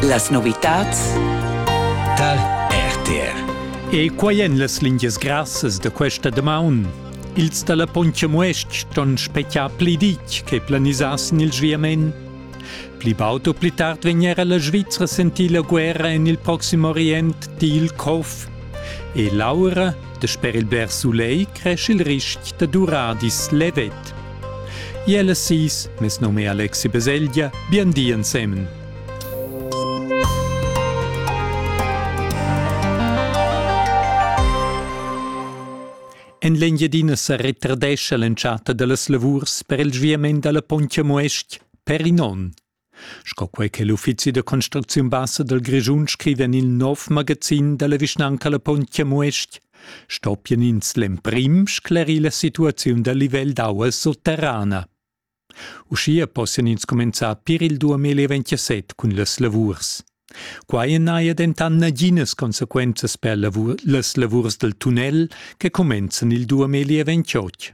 Las novitats tar RTR. E quai èn las lingias grassas da questa damaun. Ils da la Pontcha Muestg ston spetgar pli ditg che planisà sin il sviament. Pli baud u pli tard vegn era la Svizra sentir la guerra en il Proxim Orient, di il COF. E l'aura, dasper il bler sulegl, cresce il ristg da duradis levet. Iel e sis, mes num è Alexi Beseglia, bien di ensemen. En l'Engiadina sa retardescha l'entschatta da las lavurs per il sviament da la Pontia Muestg per in onn. Sco quei che l'uffizi da construcziun bassa dal Grischun scriva en il nov magazin dalla vischnanca La Pontgia Muest, stoppien ins l'emprim sclerir la situaziun dal livel d'aua sotterrana. Uschia possian ins comenzar pir il 2027 cun las lavurs. Quai n'haja dentant naginas consequenzas per lavur, las lavurs dal tunnel che cumenzan il 2028.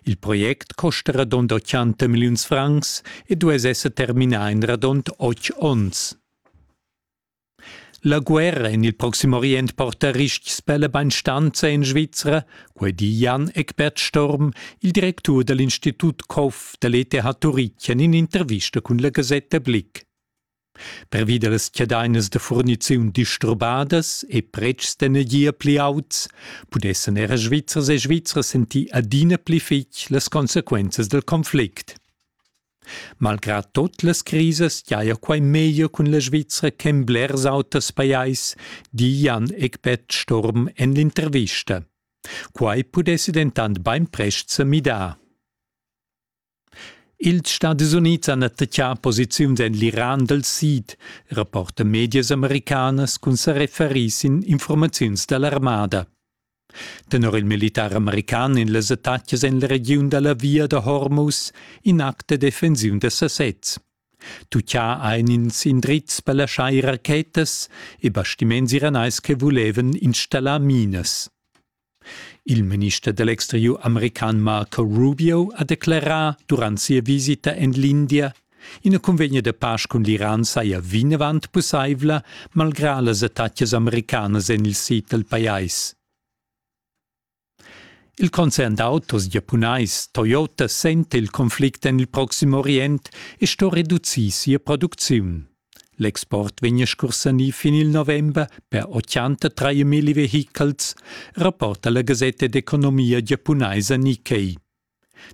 Il project costa radund 80 milliuns francs e duess esser terminà in radund otg onns. La guerra en il Proxim Orient porta ristgs per la bainstanza en Svizra, quai di Jan Eckbert Storm, il directur da l'Institut COF da l'ETH Turitg en in'intervista cun la gasetta Blick. Pervi da las chadainas da furniziun disturbadas e pretschs d'energia pli auts pudessan era Svizzers e Svizras sentir adina pli fitg las consequenzas dal conflict. Malgrà tot las crisas giaja quai meglio cun la Svizra che en blers auters pajais, di Jan Eckbert Sturm en l'intervista. Quai pudessi dentant bainprest sa midar. Ils Stadis Unids han attaccà posiziuns en l'Iran dal sid, rapporta medias americanas cun sa referir sin informaziuns da l'armada. Tenor il militar american en las attacas en la regiun da la via da Hormuz in act da defensiun da sasez. Tuccià ein ins indrizs per laschar ir rachetas e bastiments iranais che vulevan installar minas. Il minister da l'exteriur american Marco Rubio ha declerà durant sia visita en l'India Ina cunvegna da pasch cun l'Iran saja vinavant pussaivla, malgrà las attacas americanas en il sid dal pajais. Il concern d'autos giapunais Toyota senta il conflict en il Proxim Orient e sto reducir sia producziun. L'export vegn scursanì fin il november per 83 mil vehichels, rapporta la gasetta d'economia giapunaisa Nikkei.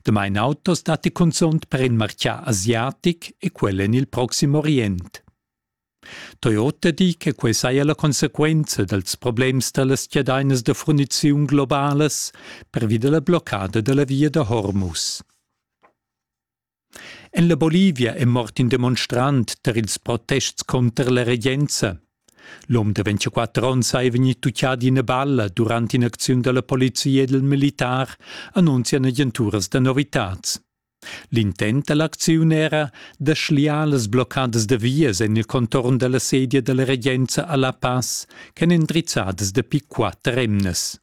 Damain autos datti cunzunt per in martgà asiatic e quel en il proxim Orient. Toyota di che quai saja la consequenza dals problems da las chadainas da furniziun globalas pervi da la bloccada da la via da Hormuz. En la Bolivia è mort in demonstrant tar ils protests cunter la regenza. L'um de 24 onns ei vegnì tuccà d'ina balla durant in'acziun dalla polizia e dal militar, annunzian agenturas da novitads. L'intent da l'acziun era da schliar las bloccadas da vias en il contorn dalla sedia dalla regenza a La Paz ch'èn endrizzadas dapi quatter emnas.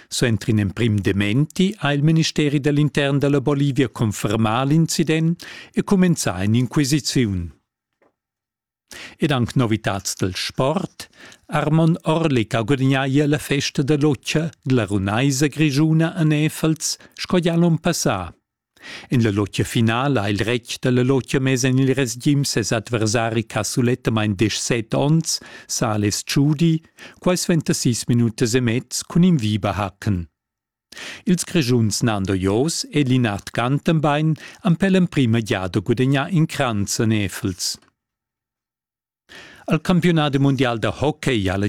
Suenter in emprim dementi ha il ministeri da l'intern da la Bolivia confermà l'incident e cumenzà in'inquisiziun. Ed anc novitads dal sport. Armon Orlik ha gudagnà ier la festa da lotgia da la runaisa grischuna a Nefels sco gia l'onn passà. En la lotgia finala ha il retg da la lotgia mess en il resgim ses adversari casulettamain desch set onns, Sales Tschudi, quai suenter sis minutas e mez cun in Viberhaken. Ils Grischuns Nando Jos e Linard Gantenbein han per l'emprima giada gudagnà in cranz a Nefels. Al campionat mundial da hockey ha la